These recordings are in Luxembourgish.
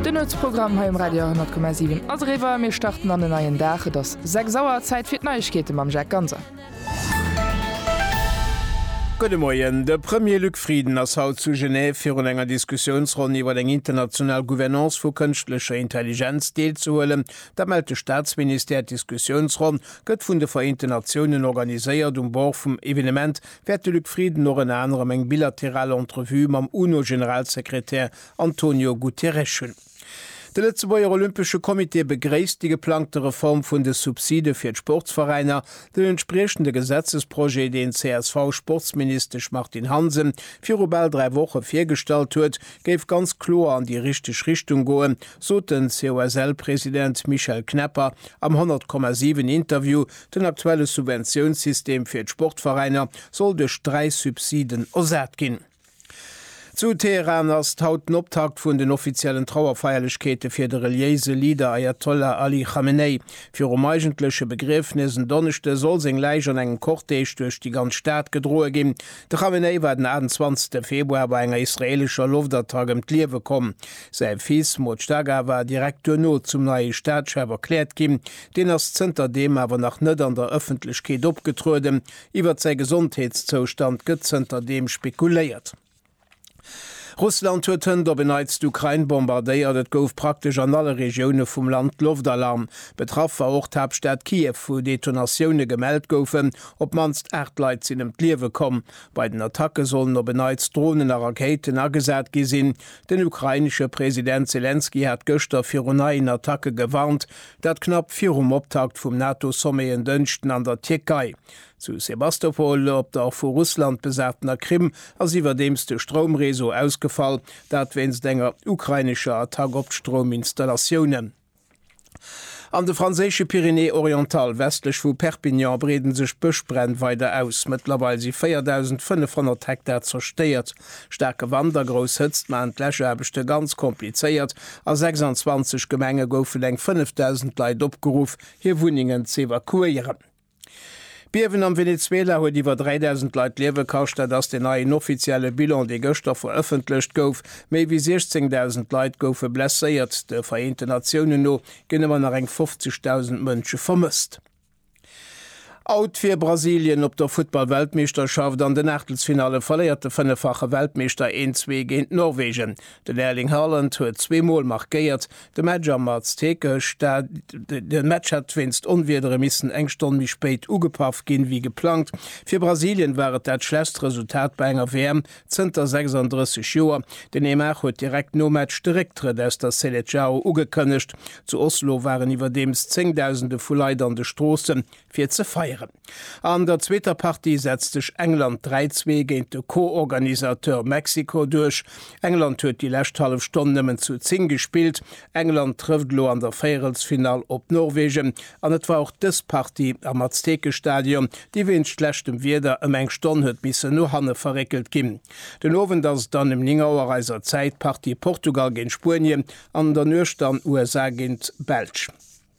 Den Nuetsprogramm hei um Radio 100,7 ass eriwwer. Mir starten an en neien Dag. Et ass 6 Auer, Zäit fir d'Neiegkeete mam Jacques Ganser. Gudde Moien. De Premier Luc Frieden ass haut zu Genève virun enger Diskussiounsronn iwwer eng international Gouvernance vu kënschtlecher Intelligenz deelzehuelen. Dat mellt de Staatsministère. D'Diskussiounsronn gëtt vun de Vereenten Natiounen organiséiert um Bord vum Evenement wäert de Luc Frieden och ënner anerem eng bilateral Entrevue mam UNO-Generalsekretär Antonio Guterres hunn. De Lëtzebuerger Olympesche Comité begréisst déi geplangte Reform vun de Subside fir d'Sportsveräiner, den entspriechende Gesetzesprojet, deen d'CSV-Sportsministesch Martine Hansen viru bal dräi Woche virgestallt huet, géif ganz kloer an déi richteg Richtung goen, sot den COSL-President Michel Knepper am 100,7 Interview Den aktuelle Subventiounssystem fir d'Sportveräiner soll duerch dräi Subsiden ersat ginn. Zu Teheran ass haut den Optakt vun den offiziellen Trauerfeierlechkeete fir de reliéise Leader Ajatollah Ali Khamenei. Virum eigentleche Begriefnes en Donneschde soll seng Läich an engem Cortège duerch déi ganz Stad gedroe ginn. De Khamenei war den 28 Februar bei enger israeelescher Loftattack ëm d'Liewe komm. Säi Fils Mojtaga war direkt duerno zum neie Staatschef erkläert ginn, Deen ass zënter deem awer nach net an der Ëffentlechkeet opgetrueden. Iwwert säi Gesondheetszoustand gëtt zënter deem spekuléiert. Russland huet hënt op en Neits d'Ukrain bombardéiert. Et gouf praktesch an alle Regioune vum Land Loftalarm. Betraff war och d'Haaptstad Kiew, wou Detonatioune gemellt goufen. Op d'mannst 8 Leit sinn ëm d'Liewe komm. Bei den Attacke sollen op en Neits Dronen a Rakéiten agesat gi sinn. Den ukrainesche President Selenskyj hat gëschter viru neien Attacke gewarnt. Dat knapp virum Optakt vum NATO-Sommet en Dënschden an der Tierkei. Zu Sebastopol, op der vu Russland besatener Krim, ass iwwerdeems de Stroumreseau ausgefall, dat wéinst enger ukrainescher Attack op d'Strouminstallatiounen. An de franséische Pyrénées-Orientales, westlech vu Perpignan, breeden sech d'Bëschbränn weider aus. Mëttlerweil si 4.500 Hektar zerstéiert. Staarke Wand a grouss Hëtzt maachen d'Läschaarbechte ganz komplizéiert. A 26 Gemenge goufen eng 5.000 Leit opgeruff, hir Wunnengen z'evakuéieren. D'Biewen am Venezuela huet iwwer 3.000 Leit d'Liewe kascht. Dat ass den neien offizielle Bilan, dee gëschter verëffentlecht gouf. Méi wéi 16.000 Leit goufe blesséiert. De Vereenten Natiounen no ginn ëmmer nach eng 50.000 Mënsche vermësst. Out wier Brasilien op der Futtball-Weltmeeschterschaft. An den Aachtelsfinalle verléiert de fënneffache Weltmeeschter 1-zwee géint Norwegen. Den Erling Haaland huet zwee Mol markéiert. De Match am Azteca Match hätt wéinst Onwiedere missen eng Stonn méi spéit ugepaff ginn, wéi geplangt. Fir Brasilien war et dat schlechtst Resultat bei enger WM Zënter 36 Joer. Den Neymar huet direkt nom Match de Récktrëtt aus der Seleçao ugekënnegt. Zu Oslo waren iwwerdeems Zéngdausende vu Leit an de Stroossen, fir ze feieren. An der zweeter Partie setzt sech England 3, 2 géint de Co-Organisateur Mexiko duerch. England huet déi lescht hallef Stonn nëmmen zu 10 gespillt. England trëfft elo an der Véierelsfinall op Norwegen an et war och dës Partie am Aztekestadion, déi wéinst schlechtem Wieder ëm eng Stonn huet missen no hanne verréckelt ginn. Den Owend ass et dann ëm 9 Auer eiser Zäit d'Partie Portugal géint Spuenien an an der Nuecht dann USA géint d'Belsch.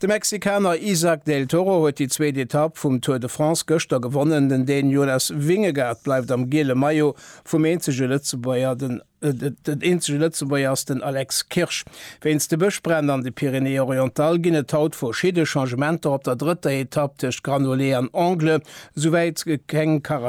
De Mexikaner Isaac del Toro huet déi zweet Etapp vum Tour de France gëschter gewonnen. Den Dän Jonas Vingegaard bleift am giele Maillot vum eenzege Lëtzebuerger. Den eenzege Lëtzebuerger ass den Alex Kirsch. Wéinst de Bëschbränn an de Pyrénées-Orientales ginn et haut verschidde Changementer op der drëtter Etapp tëscht Granollers an Angles, souwäit keng Caravane